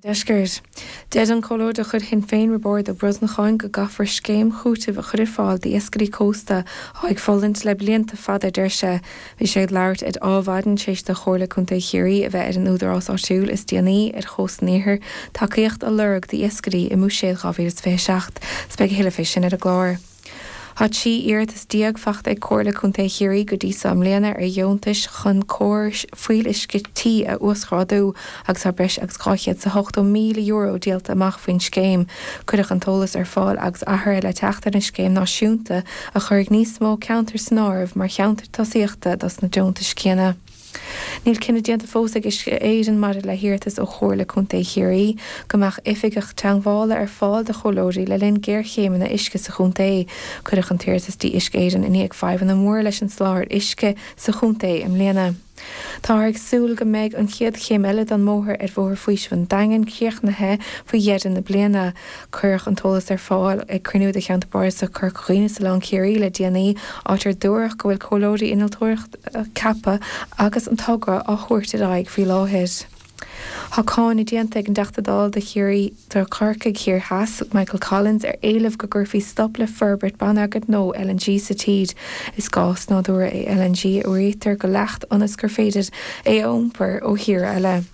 ndeisceart. Deir an Comhairleoir de chuid Shinn Féin Roibeárd Ó Brosnacháin go gcaithfear scéim chúitimh a chur ar fáil d'iascairí cósta atá ag fulaingt le blianta fada, deir sé. Bhí sé ag labhairt ar Adhmhaidin tar éis do Chomhairle Contae Chiarraí a bheith ar an Údarás Áitiúil is déanaí ar Chósta an Iarthair tacaíocht a lorg d'iascairí i mBuiséad 2027. Is beidh a thuilleadh fé sin ar an gclár. Tá trí iarratas déag fachta ag Comhairle Contae Chiarraí go dtí seo i mbliana ar dheontais chun córais fuíolluisce tí a uasghrádú agus tá breis agus €280,000 díolta amach faoin scéim. Cuireadh an t-eolas ar fáil agus athruithe le teacht ar an scéim náisiúnta a chuirfidh níos mó ceantar san áireamh mar cheantair tosaíochta dos na deontais céanna. Níl cinneadh déanta fós ag Uisce Éireann maidir le hiarratas ó Chomhairle Contae Chiarraí go mbeadh Oifigeach Teangmhála ar fáil do chomhairleoirí le linn géarchéimeanna uisce sa chontae. Cuireadh an t-iarratas dtí Uisce Éireann i ndiaidh fadhbanna móra leis an soláthar uisce sa chontae i mbliana. Táthar ag súil go mbeidh an chéad chéim eile den mbóthar ar Bhóthar Faoisimh an Daingin críochnaithe faoi dheireadh na bliana. Cuireadh an t-eolas ar fáil ag cruinniú de Cheantar Bardasach Chorca Dhuibhne is Oileán Chiarraí le déanaí, áit ar dúradh go bhfuil comhairleoirí innealtóireachta ceaptha agus an togra á thabhairt ar aghaidh faoi láthair. Tá cáineadh déanta ag an dTeachta Dála do Chiarraí, do Chorcaigh Thiar Theas, Michael Collins ar éileamh go gcuirfí stop le forbairt bonneagair nua LNG sa tír. Is gás nádúrtha é LNG a fhuaraítear go leacht ionas gur féidir é a iompar ó thír eile.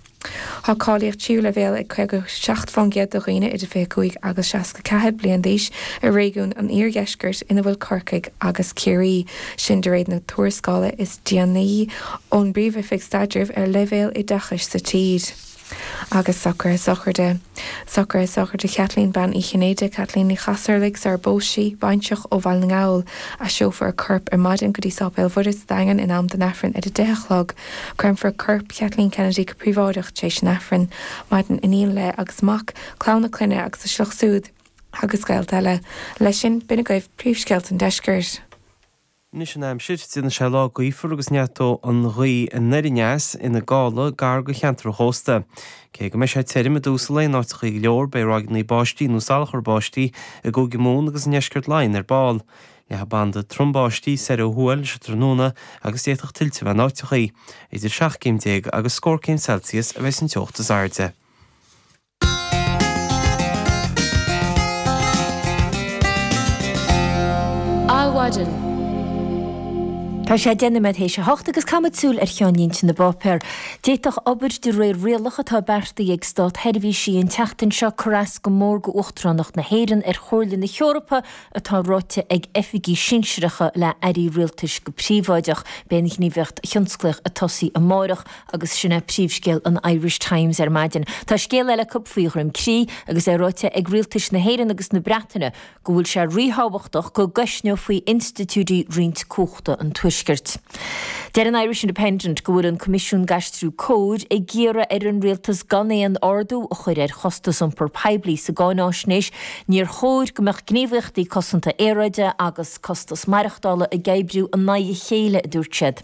Tá cáilíocht tríú leibhéal ag 57% de dhaoine idir 25 agus 64 bliain d'aois i réigiún an Iardheiscirt ina bhfuil Corcaigh agus Ciarraí, sin de réir na tuarascála is déanaí ón bPríomhoifig Staidrimh ar leibhéal oideachais sa tír. Agus socruithe sochraide. Socruithe sochraide Chaitlín Bean Uí Chinnéide, Caitlín Ní Chasarlaigh, sarar phós sí, baintreach ó Bhaile na nGall. Aistreofar a corp ar maidin go dtí Sáipéal Mhuire sa Daingean in am don Aifreann ar a deich a chlog. Créamfar corp Kathleen Kennedy go príobháideach tar éis an Aifrinn Maireann iníon léi agus mac, clann a clainne agus a sliocht súd agus gaolta eile. Leis sin, b'in agaibh príomhscéalta an deiscirt. Anois an aimsir. Déanfaidh sé lá gaofar agus neartóidh an ghaoth anoir aneas ina gála gar do cheantar an chósta. Cé go mbeidh sé tirim i dtús lae in áiteachaí go leor, beidh ráigeannaí báistí nó salachar báistí i gCúige Mumhan agus i ndeisceart Laighean ar ball. Leathfaidh banda trom báistí soir ó thuaidh leis an tráthnóna agus d'fhéadfadh tuilte a bheith in áiteachaí. Idir seacht gcéim déag agus scór céim Celsius a bheidh an teocht is airde. Adhmhaidin. Tá sé deich nóiméad théis a hocht agus caithfimid súil ar cheannlínte na bpáipéar. D'fhéadfadh obair de réir rialach atá beartaithe ag státseirbhísigh an tseachtain seo cur as go mór do Uachtaránacht na hÉireann ar Chomhairle na hEorpa atá ráite ag oifigigh sinsearacha le airí rialtais go príobháideach, beidh an ghníomhaíocht thionsclaíoch ag tosaí amárach agus sin é príomhscéal an Irish Times ar maidin. Tá scéal eile acu faoi Dhroim Crí agus é ráite ag rialtais na hÉireann agus na Breataine go bhfuil sé ríthábhachtach go gcoisneofaí institiúidí roinnt cumhachta an Tuaiscirt. Deir an Irish Independent go bhfuil an Coimisiún d'Aistriú Cóir ag iarraidh ar an rialtas gan aon ardú a chur ar chostas iompar poiblí sa gcáináisnéis, Níor chóir go mbeadh gníomhaíochtaí cosanta aeráide agus costas maireachtála ag oibriú in aghaidh a chéile, a dúirt siad.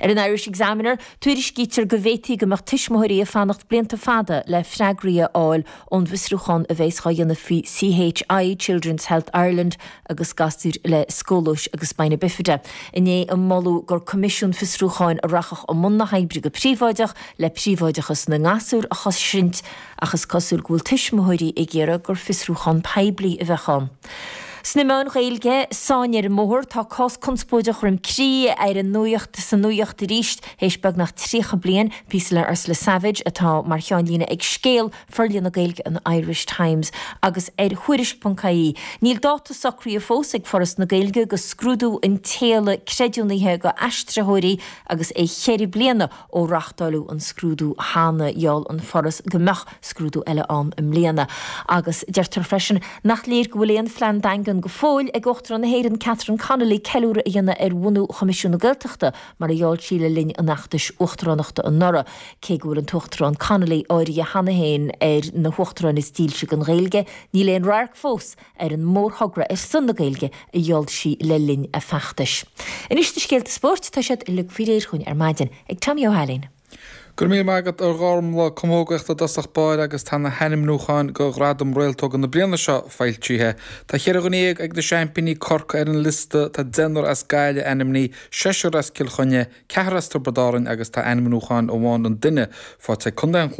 Ar an Irish Examiner, tuairiscítear go bhféadfaí go mbeadh tuismitheoirí ag fanacht blianta fada le freagraí a fháil ón bhfiosrúchán a bheas á dhéanamh faoi CHI, Children's Health Ireland, agus gasúir le scolióis agus spina bifida inné a moladh gur coimisiún fiosrúcháin a rachadh i mbun na hoibre go príobháideach le príobháideachas na ngasúr a chosaint. Ach is cosúil go bhfuil tuismitheoirí ag iarraidh gur fiosrúchán poiblí a bheadh ann. Sna meáin Ghaeilge, Sáinn ar an mBóthar, tá cás conspóideach Dhroim Crí ar an nuacht, sa nuacht arís théis beagnach 30 bliain. Píosa le Ursula Savage atá mar cheannlíne ag scéal ar leathanach Gaeilge an Irish Times, agus ar Thuairisc.ie. Níl dáta socraithe fós ag Foras na Gaeilge do scrúdú an tSéala Creidiúnaithe do aistritheoirí agus é cheithre bliana Ó reachtáileadh an scrúdú cheana, gheall an Foras go mbeadh scrúdú eile ann i mbliana, agus deirtear freisin nach léir go bhfuil aon phlean daingean go fóill ag Uachtarán na hÉireann Catherine Connolly ceiliúradh a dhéanamh ar bhunú Choimisiún na Gaeltachta mar a gheall sí le linn an fheachtais uachtaránachta anuraidh, cé go bhfuil an tUachtarán Connolly áirithe cheana féin ar na huachtaráin is dílse don Ghaeilge, níl aon radharc fós ar an mórthogra ar son na Gaeilge a gheall sí le linn a feachtais. Anois na scéalta spóirt, tá siad uilig faoi réir dhúinn ar maidin ag Tommy Ó hAilín. Go raibh míle maith agat a Ghormfhlaith, camógaíocht i dtosach báire agus tá na hainmniúcháin do Ghradaim Réaltóga na bliana seo foilsithe. Tá cheithre dhuine dhéag ag na seaimpíní, Corcaigh, ar an liosta, tá deichniúr as Gaillimh ainmnithe, seisear as Cill Chainnigh, ceathrar as Tiobraid Árainn agus tá ainmniúchán amháin an duine faighte ag Co.